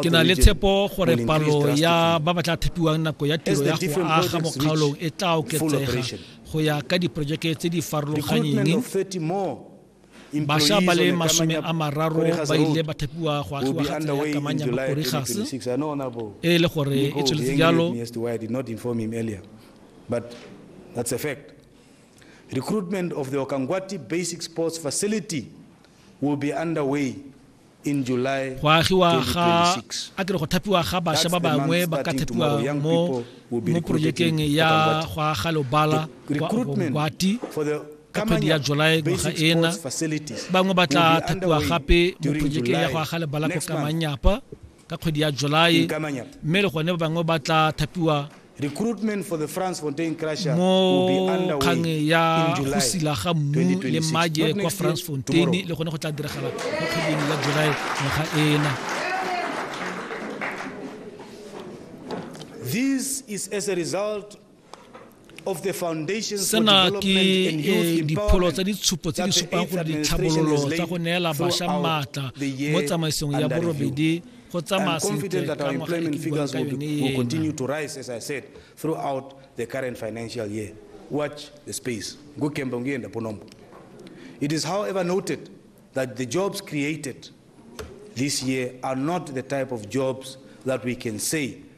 Ke na le tshepo gore palo ya ba ba tla thepiwang nako ya tiro ya go aga mo kgaolong e tla oketsega go ya ka diporojeke tse di farologanyeng. Bašwa ba le masome a mararo ba ile ba thepiwa go agiwa ga tsela ya kamanya Makorigase e le gore e tsweletse jalo That's a fact. Recruitment of the Okangwati Basic Sports Facility will be underway Go agiwa ga, a ke re go thapiwa ga basha ba bangwe ba ka thapiwa mo mo projekeng ya go aga lobala kwa Obongwati ka kgwedi ya July ngwaga ena bangwe ba tla thapiwa gape mo projekeng ya go aga lebala ko Kamanyapa ka kgwedi ya July mme le gone ba bangwe ba tla thapiwa Recruitment for the Fransfontein Crusher will be underway in July 2026. Not next year, tomorrow. le gone go tla diragala mo kgweding ya July ngwaga ena. This is as a result sena ke eh, dipholo tsa ditshupo tse di supang gore ditlhabololo tsa go neela bašwa maatla mo tsamaisong ya borobedi go tsamaya sentle ka ngwaga e ke buang ka yone ena Watch the space. Ngukembe ngiyenda ponombo. It is however noted that the jobs created this year are not the type of jobs that we can say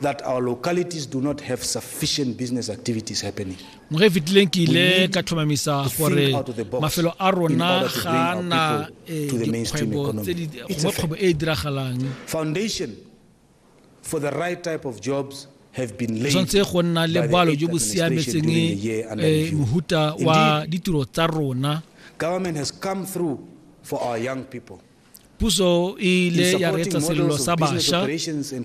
that our localities do not have sufficient business activities happening. mo ge fetileng ke ile ka tlhomamisa gore mafelo a rona ga na eh, dikgwebo tse di gongwe kgwebo e e diragalang foundation for the right type of jobs tshwanetse go nna le boalo jo bo siametseng eh, mohuta wa ditiro tsa rona government has come through for our young people Puso e ile ya reetsa selelo sa bašwa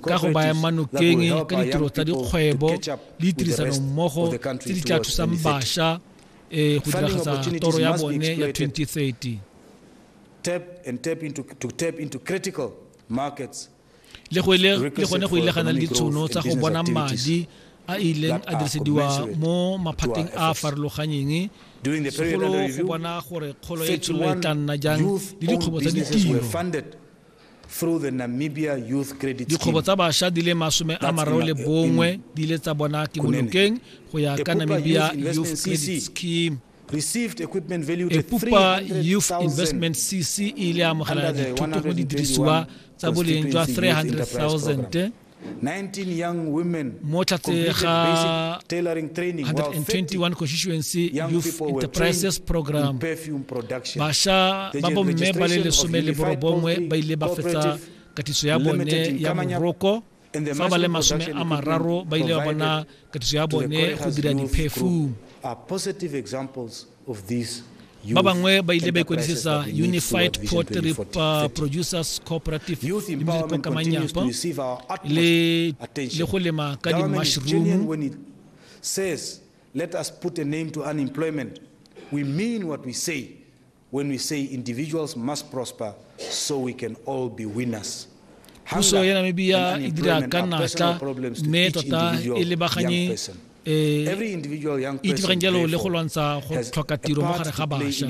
ka go baya manokeng ka ditiro tsa dikgwebo le ditirisanommogo tse di tla thusang bašwa um go diragatsa toro ya bone ya 2030 tap and tap into, to tap into critical markets le gone go ile ga na le ditshono tsa go bona madi a ileng a dirisediwa mo maphateng a a farologanyeng segolo go bona gore kgolo ya itshololo e tla nna jang le dikgwebo tsa ditiro dikgwebo tsa bašwa di le masome a mararo le bongwe di ile tsa bona kemonokeng go ya ka namibia youth credit scheme epupa youth investment cc e ile amogela dithuto mo didirisiwa tsa boleng jwa 300000 19 young women mo tlhatse ga 121 constituency youth enterprises program basha ba bomme ba le lesome le borobongwe ba ile ba fetsa katiso ya bone ya moroko fa ba le masome a mararo ba ile ba bona katiso ya bone go dira diphefu ba bangwe ba ile ba ikwadisetsa unified pottery uh, producers cooperative kamanyapa le go lema ka di-mushroom says let us put a name to unemployment we mean what we say When we say individuals must prosper so we can all be winners. Puso ya Namibia e dira ka natla mme tota e lebaganye e itegang jalo le go lwantsha go tlhoka tiro mo gare ga bašwa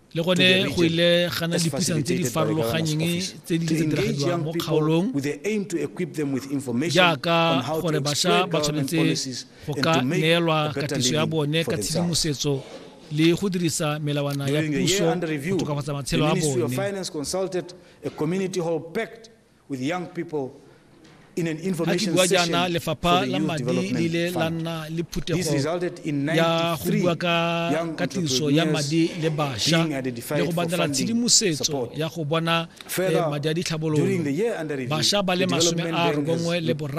le gone go ile gana dipuisano tse di farologanyeng tse di tse diragadiwang mo kgaolong jaaka gore bašwa ba tshwanetse go ka neelwa katiso ya bone ka tshedimosetso le go dirisa melawana ya puso go tokafatsa matshelo a bone With young people a ke bua jaana lefapha la madi le ile la nna le phuthego ya go bua ka ka tiriso ya madi le basha le go batlela tshedimosetso ya go bona eh, madi a ditlhabololo basha ba le masome a robongwe le boraro